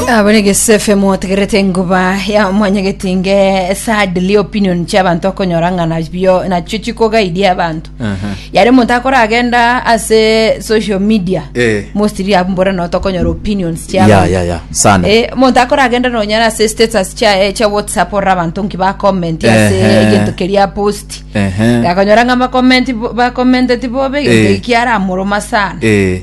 abarege sefe motegerete enguba ya mwanyagetinge sadly opinion chia abantu akonyora ng'a nabio nachio chikogaidia abantu Aha. yare omonto akoragenda ase social media Eh. mostly abore noto okonyora opinions chia ya abantu. ya ya sana Eh, omonto akoragenda nonyara ase status chiaye chia whatsapp orora abanto nki bacomment ase Ehe. egento keria post Ehe. gakonyora ng'a bacomment bacomenteti bobe egento Eh. ekiaramoroma sana Eh,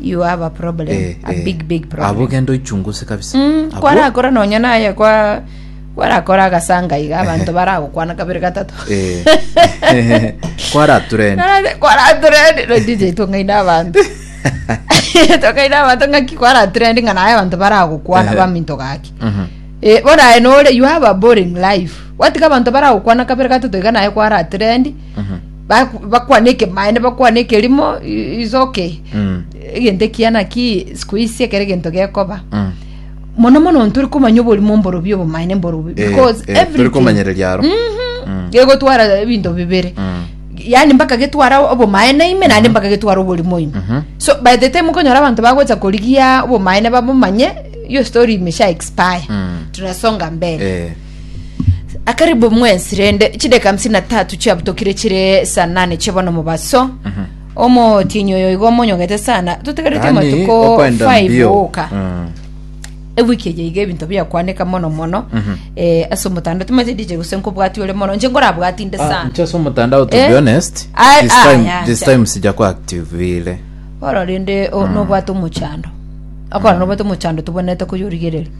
You have a problem. Eh, a eh. big big problem. Abo genda oichunguse kabisa. Mm, Abwo- kwarakora nonya naye kwa kwarakora agasanga iga abanto baragokwana kabere gatato Eh. kwaraturenda Narabe, kwaraturende no dj tong'aina abanto tong'aina abanto ng'aki kwaraturende ng'a naye abanto baragokwana Ehe. baminto gaki Mhm. Eh, bonaye nore you have a boring life watiga abanto baragokwana kabere gatato iga naye kwaraturende Mhm. Baku- bakwane ekemaene bakwane ekerimo i- is okay Mm. egento ekiya naki sikuisi ekero egento gekoba Mm. mono mono ntore komanya oborimo mborobio obomaene mborobio Eh, because eh, everything- tore komanyereria aro. Mhm. gegotwara ebinto bibere Mm. yani mpaka getwara obomaene ime naende mpaka getwara oborimo ime Mhm. so by the time okonyora abanto bagocha korigia obomaene babomanye yo story imesha expire Mm. tunasonga mbele Eh. akaribu mwensi rende chideka hamsini na tatu chiabutokire chire saa nane chia bono mobaso Mhm. omotienyi oyo igo omonyogete sana totegerete Yaani, amatuko okwenda 5 mbio. oka Mm. ewiki eye iga ebinto biakwaneka mono mono Mhm. eh, ase omotanda timanyete dije gose nkobwati ore mono nche nkorabwati nde Ah, sana nchase omotandao to Eh? be honest Ah, this ah, time, yeah, this yeah. time sija kwa activile ora rende o- nobwate omochando akora nobwate omochando tobonete koyorigerera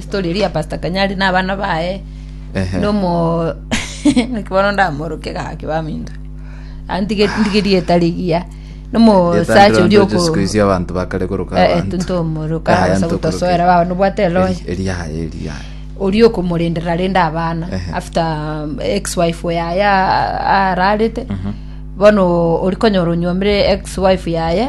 Story eria ya Pastor Kanyari na abana baye Ehe. nomo naki bono ndamoroke gaki baminto antige ndigerie tarigia nomo Yetandira sacha ori ntoche siku isi abantu bakare koroka Eh, eh, abantu. tuntomoroka, Yahaya basa ntokoroka. gotosoera, baba nobwate eloya. Eri- eri yahaya, eri yahaya. ori okomorenderera rende abana Ehe. after um, ex wife yaye a- ararete bono ori konyora onywomire ex wife yaye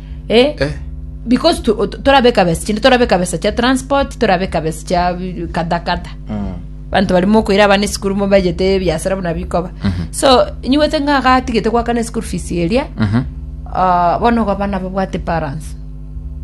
eh, Eh. because tu- tu- torabeka besa chinde torabeka besa chia transport torabeka besa chia bi- kata kata bantu barimo okoira abana esukuru mo bajete ebiasara buna bikoba so nyiwete ng'a gatigete gwakana esukuru fees eria ah, bono ogo abana babwate balance